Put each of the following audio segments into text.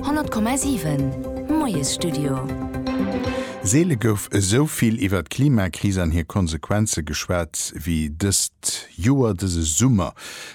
100,7 Moiesstudio. Seele gouf esou vill iwwert d'Klimakris an hir Konsequenze geschwat wéi dëst Joer, dëse Summer.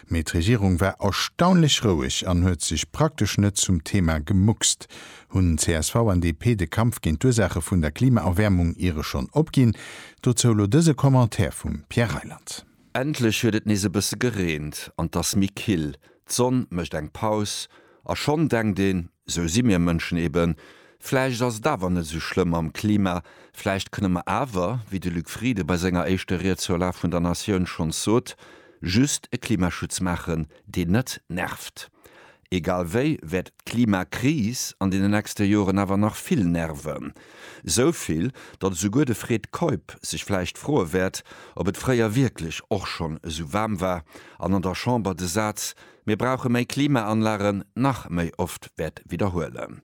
Mee d'Regierung war erstaunlech roueg an huet sech praktesch net zum Thema gemuckst. Hunn csv an DP de Kampf géint d'Ursaache vun der Klimaerwäermung iere schonn opginn? Dozou elo dëse Commentaire vum Pierre Reyland. Endlech huet et nees e bësse gereent an 't ass méi kill. D'Sonn mécht eng Paus a schonn denkt een, Esou si mir Mënschen eben, vläicht ass et awer net esou schlëmm mam Klima, vläicht kënne mer awer, wéi de Luc Frieden bei senger éischter Ried zur Lag vun der Natioun schonns sot, just e Klimaschutz maachen, deen net nervt. Egal wéi wäert d'Klimakris an den nächste Joren awer nach vill nerven. Esou vill, datt esouguer de Fred Keup sech vläicht froe wäert, ob et fréier wierklech och schonn esou waarm war an an der Chamber de Saz Mir brauche méi Klimaanlagen nach méi oft wäert widderhuelen.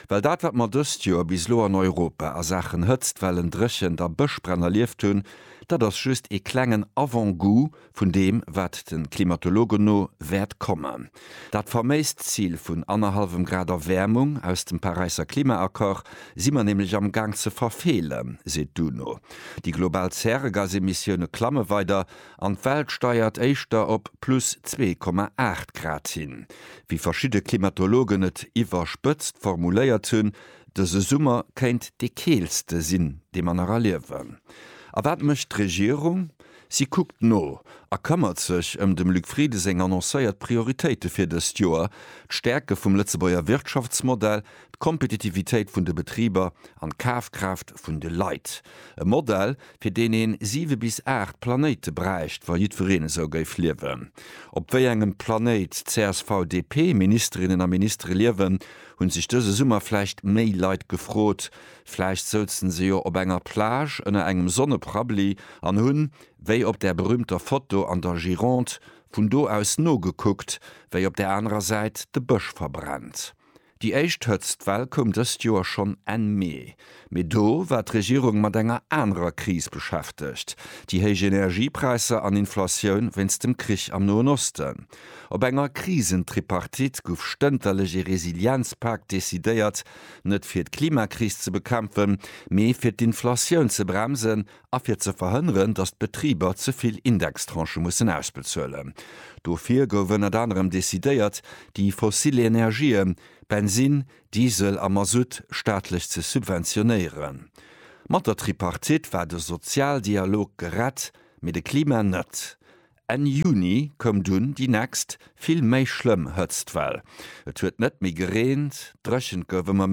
Well dat, wat mer dëst Joer bis elo an Europa a Saachen Hëtztwellen, Dréchent a Bëschbränn erlieft hunn, dat ass just ee klengen Avant-goût vun deem wat de Klimatologen no wäert kommen. Dat faméist Zil vun annerhallwem Grad Erwäermung aus dem Paräisser Klimaaccord si mer nämlech am Gaang ze verfeelen, seet d'UNO. Déi global Zäregasemissioune klamme weider an d'Welt steiert éischter op plus 2,8 Grad hin. Wéi verschidde Klimatologen et iwwerspëtzt formuléiert hunn, dëse Summer kéint dee keelste sinn, dee mer nach erliewen. A wat mécht d'Regierung? Si kuckt no a këmmert sech ëm dem Luc Frieden seng annoncéiert Prioritéite fir dëst Joer, d'Stäerke vum Lëtzebuerger Wirtschaftsmodell, d'Kompetitivitéit vun de Betriber an d'Kafkraaft vun de Leit. E Modell, fir deen een siwe bis aacht Planéite bräicht, wa jiddwereen esou géif liewen. Op wéi engem Planéit d'CSV-DP-Ministerinnen a Ministere liewen, hu sech dëse Summer vläicht méi Leit gefrot, Vläicht souzen se jo op enger Plage ënner engem Sonneprabli an hunn, wéi op där berühmter Foto an der Gironde, vun do aus nogekuckt, wéi op där anerer Säit de Bësch verbrennt. Déi éischt Hëtztwell koum dëst Joer schonn Enn Mee. Mee do war d'Regierung mat enger anerer Kris beschäftegt, déi héich Energiepräisser an Inflatioun wéinst dem Krich am Noen Osten. Op enger Krisentripartite gouf stënterlech ee Resilienzpak decidéiert, Net fir d'Klimakris ze bekämpfen, mee fir d'Inflatioun ze bremsen a fir ze verhënneren, datt d'Betriber ze vill Indextranchë mussen ausbezuelen. Dofir gouf ënnert anerem decidéiert, déi fossil Energië, Bensinn, Diesel a Masutt, staatlech ze subventionéieren. Mat der Tripartite war de Sozialdialog gerett, mee de Klima net. Enn Juni koum dunn déi nächst, vill méi schlëmm Hëtztwell. Et huet net méi gereent, dréchent gouf ëmmer.